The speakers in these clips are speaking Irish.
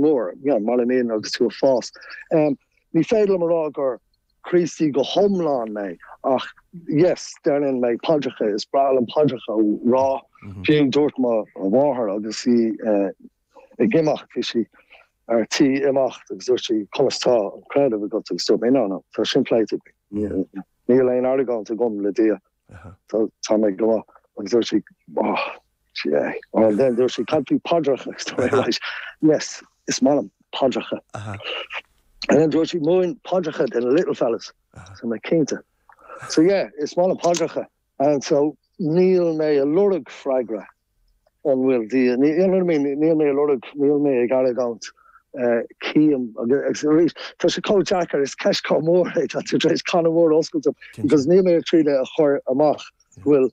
mór, yeah, maidir le mian agus tú ag fás. Em, ní féidir liom a rá gur Críostaí go hiomlán mé ach yes, deineann mé paidreacha, is breá liom paidreacha a rá. Fiú dúirt mo mháthair agus í ag imeacht, bhí sí ar tí imeacht agus dúirt sí, conas tá an creideamh agat agus dúirt mé, no, no, tá sin pléite againn, níl aon argóint agam le Dia. So tá mé go maith agus dúirt sí oh yeah and then dúirt sí cad faoi paidreacha agus tá mé right yes is maith liom paidreacha and then dúirt sí múin paidreacha do na little fellas so mé cinnte so yeah is maith liom paidreacha and so níl mé ag lorg freagra An bhfuil Dia ann? I mean. Níl mé ag lorg. Níl mé ag argóint. Cím agus arís. Tá sé chomh deacair. Is ceist chomh mór é. Tá tú tar éis canna mór oscailte because níl mé ag triail é a chur amach go bhfuil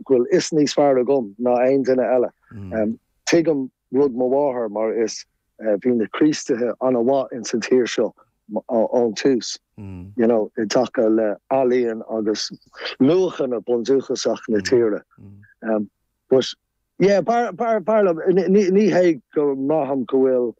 go bhfuil fios níos fearr agam ná aon duine eile. Tuigim rud mo mháthar mar is Bhí na Críostaithe an-mhaith ins an tír seo ón tús, you know, i dtaca le ealaíon agus luachanna bundúchasach na tíre. But, yeah, b'fhearr, b'fhearr liom, ní hé go mbraithim go bhfuil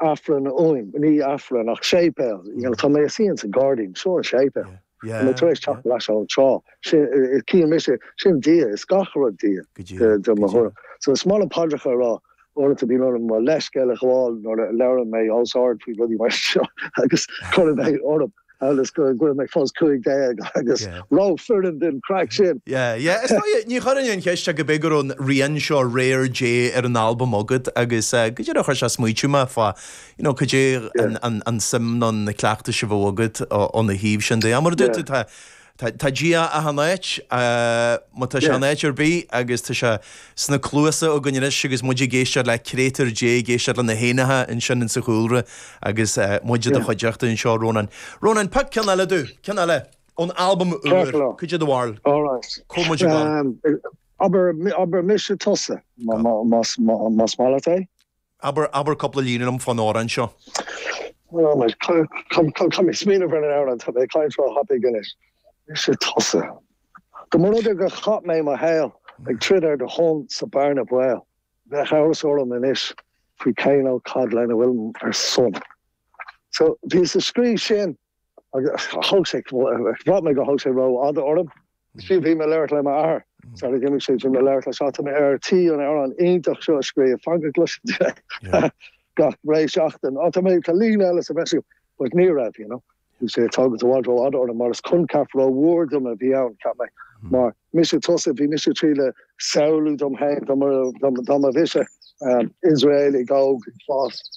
Aifreann uaim, ní Aifreann ach séipéal, you know, tá mé suí ins an gairdín, seo an séipéal. Tá mé tar éis teacht ar ais ann tráth. Cíonn mise, sin Dia, is gach rud Dia, de mo thuairim. So is maith liom paidreacha a rá uaireanta, bíonn orm mo leithscéal a ghabháil nuair a labhraíonn mé os ard faoi rudaí mar seo agus cuireann mé orm agus go bhfuil mé fós cúig déag agus rófhireann don chraic sin! Yeah, yeah, is dóigh, ní chuirfinn an cheist ach go b'é go raibh an rian seo Réir Dé ar an albam agat agus go díreach chuir sé ag smaoitiú mé fá You know caidé an suim nó na cleachtais a bheadh agat óna thaobh sin de. Mar a dúirt tú tá tá Dia achan áit má tá sé in áit ar bith agus tá sé sna cluasa againn anois agus muid ag éisteacht le créatúir Dé ag éisteacht le na héanacha ansin ins an chúlra agus muid i do chuideachta anseo Rónán. Rónán pioc ceann eile dúinn, ceann eile ón albam úr, caidé ab fhearr. Alright. Comh muid i bhfad. Abair mise tusa más maith leat é? Abair, abair cúpla líne liom fán amhrán seo. All right, caithfidh mé smaoineamh ar an amhrán, tá mé caint róthapaidh anois. Mise tusa. Dá mba rud é gur chaith mé mo shaol ag troid ar do shon sa bearna baoil, bheadh amhras orm anois faoi cé nó cad lena bhfuilim ar son. So, bhíos ag scríobh sin. Thug sé, bhraith mé go thug sé rófhada orm. Is fiú bhí mé labhairt le m'athair, sara d'imigh sé, bhí mé labhairt leis atáim ar tí an amhrán iontach seo a scríobh, fagach gluaiseachta gach re seachtain. Á tá mé, tá líne eile sa bhreis acu, but ní raibh, you know. Thug sé thug i bhfad rófhada orm mar is coincheap rómhór dom a bhí ann, cheap mé. Mar mise tusa, bhí mise ag triail samhlú dom féin dá mba mise Iosraeligh óg, fás.